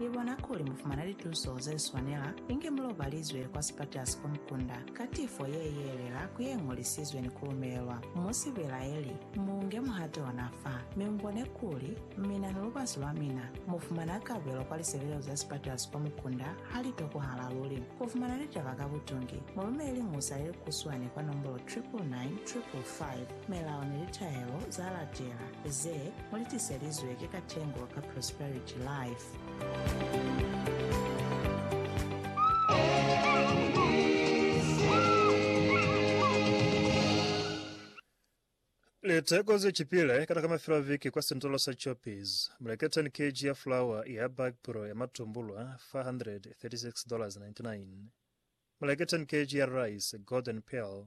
Ni bona kuli mu fumana lituso ze swanela, inge mu lobalizwe kwa sipatela si komukunda, ka tifo ye yelela ku ye ñolisizwe ni ku lumelelwa. Mu si belaeli, mu nge muhato ona fa, mi mu bone kuli mina ni lubasi lwa mina mu fumana kabelo kwa lisebelezo za sipatela si komukunda ha li tokohala luli. Ku fumana litaba ka butungi, mu lumele liñusa le likuswani kwa nombolo 999555. Melao ni litaelo za latela. Ze mu li tiselizwe ki katengo ka Prosperity Life. Liteko ze chipile kana ka mafelo a viki kwa sentolo sa Choppies. Mu leke 10 kg ya flour ya bag pro ya matumbulwa $436.99. Mu leke 10 kg ya rice Golden Pearl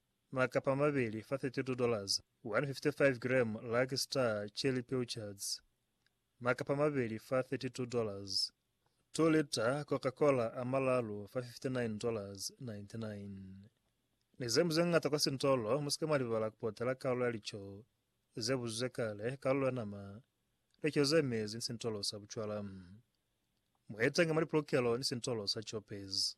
makapa mabeli fa $32, 155 gram Lucky Star cherry pilchards, makapa mabeli fa $32, 2 lita Coca-Cola a malalu fa $59.99. Ni ze mu ze ngata kwa sintolo, mu si ke mwa libala ku potela kalulo ya lico ze buzuzwe kale, kalulo ya nama, lico ze mezi ni sintolo sa bucwala. Mu etenge mwa lipulukelo ni sintolo sa Choppers.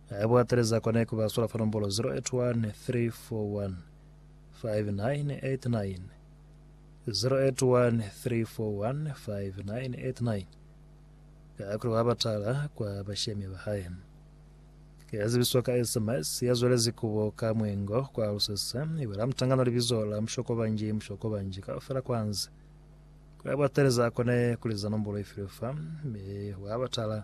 Haiba wa teleza kona ku ba sola fa nombolo 0813415989, 0813415989, kakuli wa batala kwa bashemi ba hae. Ki ya zibiso ka SMS ya zwelezi ku bo ka mwengo kwa lusese, i bwela mutangano libizo la mushokobanji mushokobanji kaufela kwa nzi. Haiba wa teleza kona ku liza nombolo i filwe fa, mi wa batala.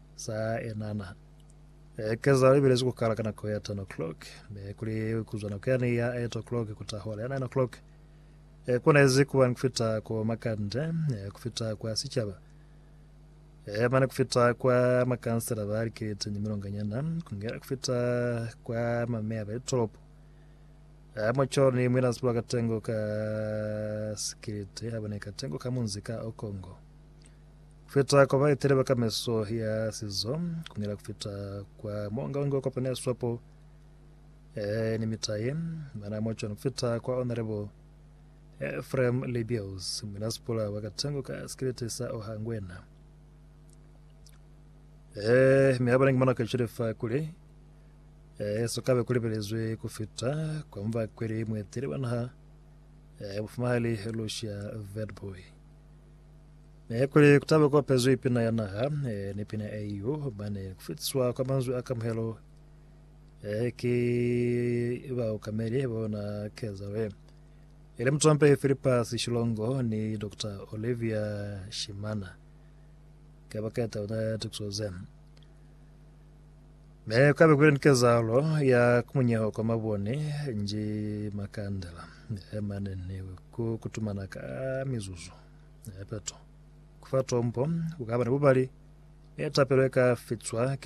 Sa enana. Ekeza ibelezi ku kala ka nako ya 10 o'clock, mi kuli kuzwa nako yani ya 8 o'clock kuta hola ya 9 o'clock. Ekonezi kuba ni kufita ko makande, kufita kwa sicaba, mane kufita kwa makansela ba likete ni milonganyana, kungela kufita kwa mameya ba litolopo. Moco ni mwina sibulo ka tengo ka sikiliti, abone ka tengo ka munzi ka Okongo. Kufita kwa baeteli ba kameso ya sizo kunila kufita kwa mo nga unge ukopana ya swapo e ni mitaye mana mo chona kufita kwa honorable Ephraim Libios munasipula wa Katengo ka sikiliti sa Ohangwena Eh, mi haba ningimana ka chile fa kule. Eh, so kabe kule belezwe kufita kwa mva kweli mwetele banaha. Eh, bufumahali Lucia Vedboy. Ee, kuli kutabe kuopezwi pina ya naha, ee, ni pina ya EU, mane kufitiswa kwa manzwi a kamuhelo, ee, ki baokameli ba yona kezalo ye. Ili mutompehi Philippus Shilongo ni Doctor Olivia Shimana ke baketa ona tukiso ze. Me kabe kuli ni kezalo ya kumunyeho kwa mabone nji makandela, ee, mane ni ku kutumana ka mizuzu. Nepeto. Ku fa tombo ku ka ba ni bubali, mi tapelo i ka fitwa ki